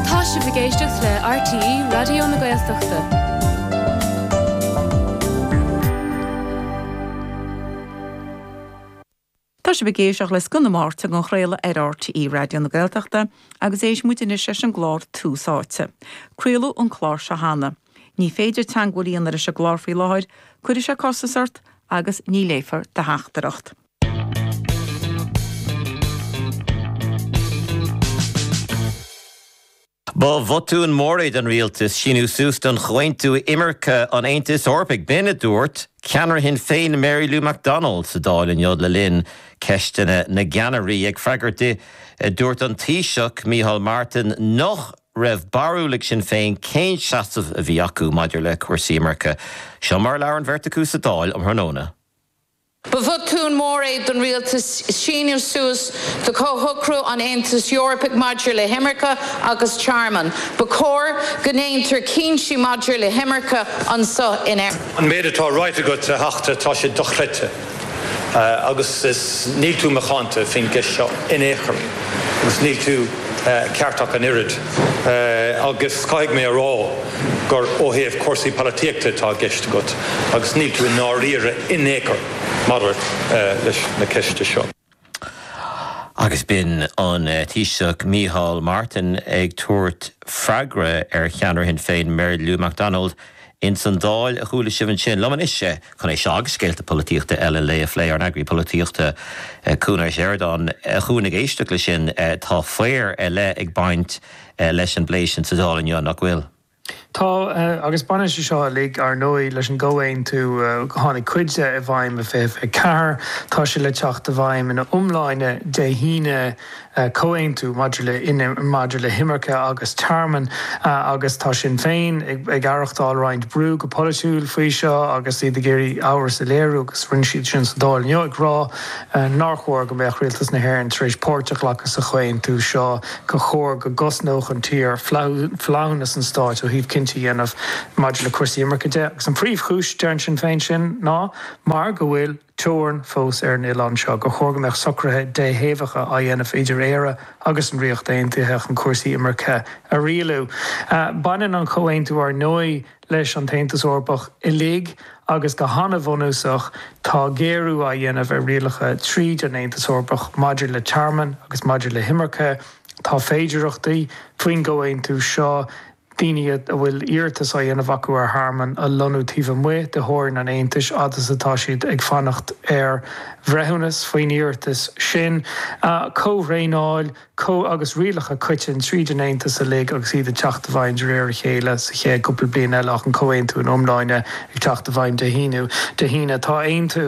Tá sibh ag éisteacht le RTÉ Raidió na Gaeltachta. Tá sibh ag éisteacht le Scoth na Máirte á chraoladh ar RTÉ Raidió na Gaeltachta agus éist muid anois leis an gclár Tús Áite. Craoladh an clár seo cheana. Ní féidir teagmháil a dhéanamh leis an gclár faoi láthair, cuirfidh sé costas ort agus ní léifear do theachtaireacht. Ba bhotún mór é don rialtas síniú suas don chomhaontú imirce an Aontais Eorpaigh. B'in a dúirt ceannaire Shinn Féin Mary Lou McDonald sa Dáil inniu le linn Ceisteanna na gCeannairí. Ag freagairt di, dúirt an Taoiseach Micheál Martin nach raibh barúil ag Sinn Féin cén seasamh a bhí acu maidir le cúrsaí imirce. Seo mar a labhair an bheirt acu sa Dáil um thráthnóna. Ba bhotún mór é don rialtas síniú suas do Chomhshocrú an Aontais Eorpaigh maidir le hImirce agus Tearmann. Ba chóir go ndéantar cinntí maidir le himirce anso in Éirinn. An méid atá ráite agat, a Theachta, tá sé dochreidte agus níl tú macánta faoin gceist seo in aon chor agus níl tú ceart ach an oiread agus caithfidh mé a rá, gur ó thaobh cúrsaí polaitíochta atá i gceist agat agus níl tú i ndáiríre in ao'chor maidir leis na ceiste seo. Agus b'in an Taoiseach Micheál Martin ag tabhairt freagra ar cheannaire Shinn Féin Mary Lou McDonald ins an Dáil, a chuala sibh ansin. Liom anois é, chun é seo agus scéalta polaitíochta eile an lae a phlé ár n-eagraí polaitíochta Cuan Ó Seireadáin. A Chuain, ag éisteacht leis sin tá faobhar ar leith ag baint leis an bplé sin sa Dáil inniu, nach bhfuil? Tá, agus baineann sé seo uilig, ar ndóigh, leis an gcomhaontú. Tháinig cuid de i bhfeidhm in 2024, tá sé le teacht i bhfeidhm ina iomláine Dé hAoine, comhaontú maidir le, maidir le himirce agus tearmann, agus tá Sinn Féin ag aireachtáil roinnt brú go polaitiúil faoi seo agus iad ag iarraidh amhras a léiriú, agus rinne siad sin sa Dáil inniu, ag rá nár chóir go mbeadh Rialtas na hÉireann tar éis páirt a ghlacadh sa chomhaontú seo. gur chóir go gcosnódh an tír flaithiúnas an stáit ó thaobh cinntí a dhéanamh maidir le cúrsaí imirce de agus an phríomhchúis, deireann Sinn Féin, sin ná mar go bhfuil teorainn fós ar an oileán seo, gur chóir go mbeadh socruithe déthaobhacha á dhéanamh idir Éire agus an Ríocht Aontaithe chun cúrsaí imirce a rialú. Baineann an comhaontú, ar ndóigh, leis an tAontas Eorpach uilig agus go han-bhunúsach tá géarú á dhéanamh ar rialacha tríd an Aontas Eorpach maidir le tearmann agus maidir le himirce. Tá féidearthachtaí, faoin gcomhaontú seo, daoine a bhfuil iarratas á dhéanamh acu ar thearmann a lonnú taobh amuigh de theorainn an Aontais fhad is atá siad ag fanacht ar bhreithiúnas faoin iarratas sin. Comhthraenáil. Comha agus rialacha coiteann tríd an Aontas uilig agus iad ag teacht i bhfeidhm de réir a chéile sa chéad cúpla bliain eile ach an comhaontú ina iomláine ag teacht i bhfeidhm Dé hAoine. Dé hAoine. Tá Aontú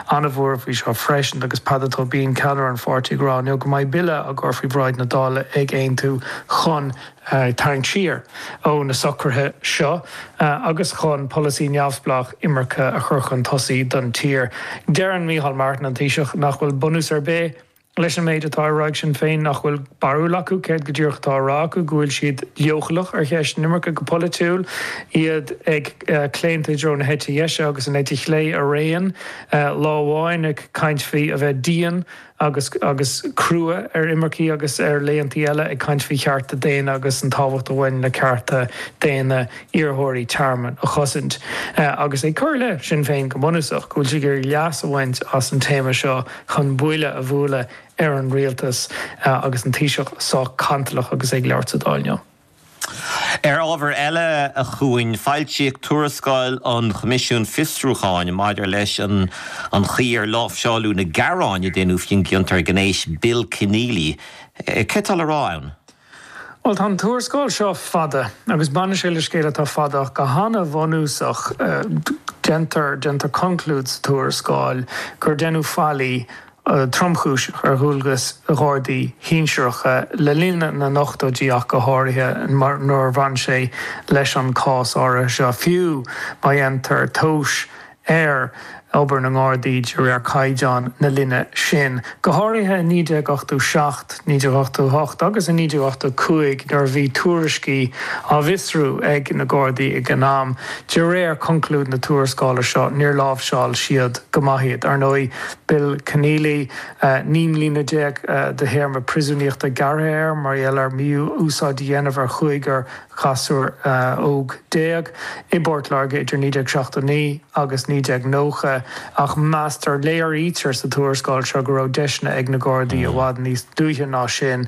an-mhór faoi seo freisin agus Peadar Tóibín, ceannaire an pháirtí ag rá inniu go mbeidh bille á chur faoi bhráid na Dála ag Aontú chun tarraingt siar ó na socruithe seo agus chun polasaí neamhspleách imirce a chur chun tosaigh don tír. Deireann Micheál Martin, an Taoiseach, nach bhfuil bunús ar bith. leis an méid atá á rá ag Sinn Féin nach bhfuil barúil acu céard go díreach atá á rá acu, go bhfuil siad leochaileach ar cheist na himirce go polaitiúil, iad ag claonta i dtreo na heite deise agus an eite chlé araon, lá amháin ag caint faoi a bheith dian agus agus crua ar imircigh agus ar laethantaí eile ag caint faoi chearta daonna agus an tábhacht a bhaineann le cearta daonna iarrthóirí tearmainn a chosaint agus ag cur i leith Shinn Féin go bunúsach go bhfuil siad ag iarraidh leas a bhaint as an téama seo chun buille a bhualadh ar an rialtas agus an Taoiseach sách cantalach agus é ag labhairt sa Dáil inniu. Ar ábhar eile, a Chúáin, foilsíodh tuarascáil an Choimisiúin Fiosrúcháin maidir leis an an chaoi ar láimhseáladh na gearáin a deineadh faoin gciontóir gnéis Bill Kenneally. Céard atá le rá ann? Bhuel, tá an tuarascáil seo fada agus baineann sé le scéal atá fada ach go han-bhunúsach, déantar, déantar conclúid sa tuarascáil gur deineadh faillí tromchúiseach ar dhualgas Ghardaí sinsearacha le linn na n-ochtóidí ach go háirithe nuair a bhain sé leis an cás áirithe seo, fiú má dhéantar tomhas ar obair na nGardaí de réir caighdeán na linne sin, go háirithe i 1987, 1988 agus i 1985 nuair a bhí tuairiscí á bhfiosrú ag na Gardaí ag an am. De réir chonclúid na tuarascála seo, níor láimhseáil siad go maith iad. Ar ndóigh, Bill Kenneally, naoi mbliana déag de théarma príosúnaíochta gearrtha air mar gheall ar mhí-úsáid a dhéanamh ar chúigear ghasúr óg déag i bPort Láirge idir 1979 agus 1990 ach meastar, léirítear sa tuarascáil seo go raibh deiseanna ag na Gardaí i bhfad níos luaithe ná sin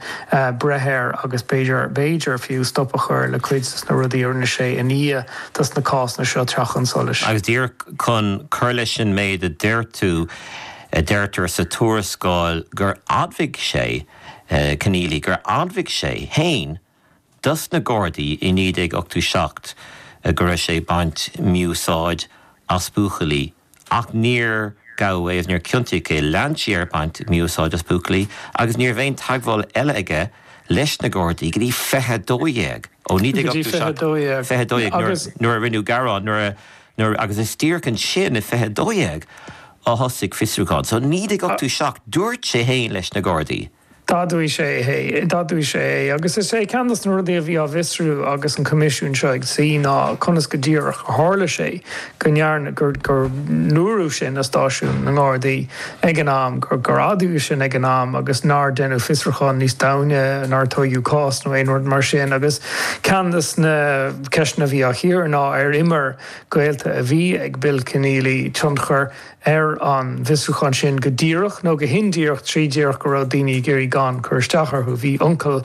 breith air agus b'fhéidir, b'fhéidir fiú, stop a chur le cuid de na rudaí a rinne sé i ndiaidh dos na cásanna seo teacht chun solais. Agus díreach chun cur leis an méid a deir tú, deirtear sa tuarascáil gur admhaigh sé, Kenneally, gur admhaigh sé fhéin dos na Gardaí i 1987 go raibh sé ag baint mí-úsáid as buachaillí ach níor gabhadh é agus níor ciontaíodh é. Lean sé air ag baint mí-úsáid as buachaillí agus ní raibh aon teagmháil eile aige leis na Gardaí go dtí 2012, ó Go dtí 2012, 2012 nuair a rinneadh gearán agus is díreach ansin i 2012 a thosaigh fiosrúchán. So i 1987 dúirt sé féin leis na Gardaí. D'admhaigh sé é. D'admhaigh sé é. Agus is é ceann de na rudaí a bhí á bhfiosrú agus an Coimisiún seo ag suí ná conas go díreach a tharla sé go ndearna, go ndúradh sin i stáisiún na nGardaí ag an am, gur, gur admhaíodh sin ag an am agus nár deineadh fiosrúchán níos domhaine, nár tógadh cás nó aon rud mar sin. Agus ceann de na ceisteanna a bhí á chíoradh ná ar imir gaolta a bhí ag Bill Kenneally tionchar, ar an bhfiosrúchán sin go díreach nó go hindíreach trí díreach go raibh daoine ag iarraidh gan cur isteach orthu. Bhí uncail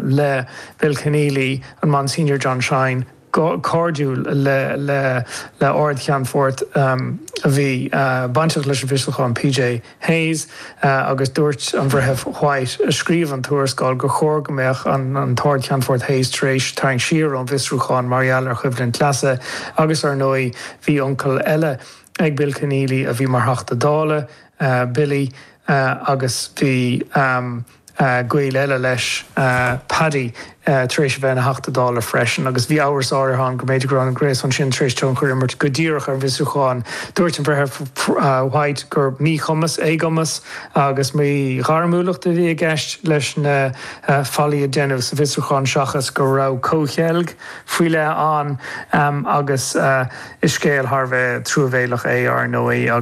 le Bill Kenneally, an Monsignor John Shine, cairdiúil le Ard-Cheannfort a bhí bainteach leis an bhfiosrúchán, P.J. Hayes, agus dúirt an Breitheamh White, a scríobh an tuarascáil, gur chóir go mbeadh an tArd-Cheannfort Hayes tar éis tarraingt siar ón bhfiosrúchán mar gheall ar choimhlint leasa agus, ar ndóigh, bhí uncail eile. ag Bill Kenneally a bhí mar Theachta Dála, Billy, agus bhí gaol eile leis, Paddy, tar éis a bheith ina Theachta Dála freisin agus bhí amhras áirithe ann go mb'fhéidir go raibh an gréasán sin tar éis tionchar a imirt go díreach ar an bhfiosrúchán. Dúirt an Breitheamh White gur míchumas, éagumas agus míghairmiúlacht a bhí i gceist leis na faillí a deineadh sa bhfiosrúchán seachas go raibh comhcheilg, faoi leith ann agus is scéal thar a bheith truamhéalach é, ar ndóigh, agus.